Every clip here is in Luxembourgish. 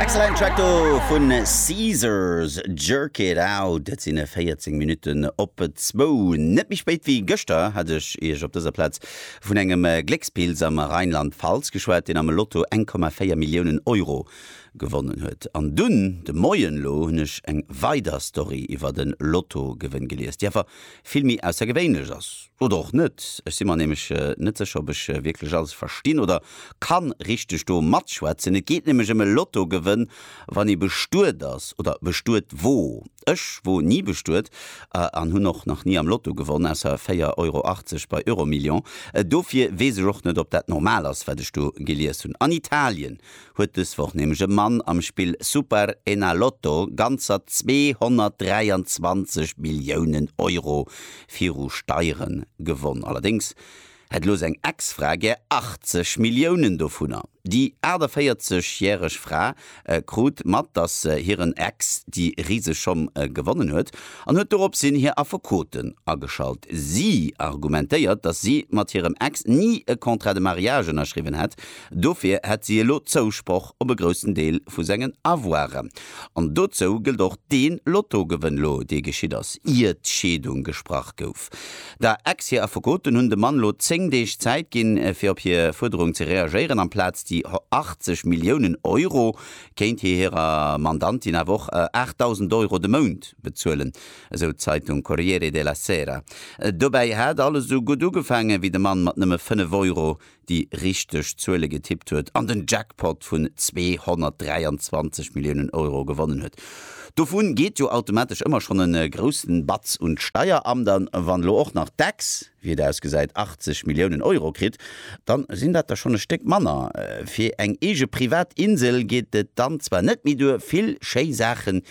Excellent Track do vun Caesars, Jerk it out. Et sinn 14 Minutten op zwou. Net méi spéit wéi gëschter hat ech Iech op dëser Plaz vun engem Gléckspilz am Rheinland-Pfalz geschwat, deen am Lotto 1,4 Milliounen Euro gewonnen huet. An dunn de Moien elo hunn ech eng weider Story iwwert e Lottogewënn gelies, déi awer vill méi aussergewéinlech ass. Oder och net. Ech si mer nämlech net sécher, ob ech wierklech alles verstinn oder kann richteg do matschwätzen. Et geet nämlech ëm e Lottogewënn, wann ee bestuet ass oder bestuet wor. Ech wor ni bestuet an hunn och nach ni am Lotto gewonn, ausser 4,80 Euro bei Euromillions. Dofir weess ech och net, ob dat normal ass, wat ech do gelies hunn. An Italien huet dës Woch nämlech e Mann am Spill Super Enalotto ganzer 223 Milliounen Euro viru Steiere gewonn. Allerdéngs hätt elo seng Ex-Fra gär 80 Milliounen dovunner. Déi 48 järeg Fra krut mat, datt hiren Ex déi riseg Schomm gewonnen huet an huet doropshin hir Affekoten ageschalt. Si argumentéiert, datt si mat hirem Ex ni e Contrat de mariage ënnerschriwwen hätt, Dofir hätt si elo Zousproch op e groussen Deel vu sengen Avoire. An dozou gëllt och dee Lottogewënn elo, dee geschitt ass, ier d'Scheedung gesprach gouf. Der Ex hir Affekoten hunn dem Mann elo 10 Deeg Zäit ginn, fir op hir Fuerderung ze reagéieren. Amplaz déi 80 Milliounen Euro kéint hie hirer Mandantin awer och 8.000 Euro de Mount bezuelen, esou d'Zeitung Corriere della Sera. Dobäi hat alles esou gutt ugefaangen, wéi de Mann mat nëmme 5 Euro déi richteg Zuele getippt huet an den Jackpot vun 223 Milliounen Euro gewonnen huet. Dovu geet jo automatesch ëmmer schonn e groussen Batz un d'Steieramt an. Wann elo och nach d'Ex, wéi et ausgesäit, 80 Milliounen Euro kritt, da sinn dat der schonn e Stéck manner. Fir eng eege privat Insel geet et dann zwar net méi duer, vill schéi Saachen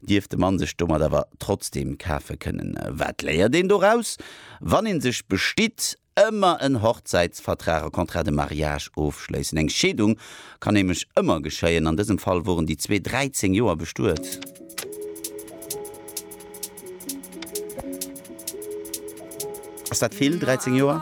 dierft de Mann sech domat awer trotzdeem kafe kënnen. Wat léiert een doraus? Wann ee sech bestitt, ëmmer en Hochzäitsvertrag, e Contrat de mariage, ofschléissen. Eng Scheedung kann nämlech ëmmer geschéien. An dësem Fall woren déi zwee 13 Joer bestuet. Ass dat vill, 13 Joer?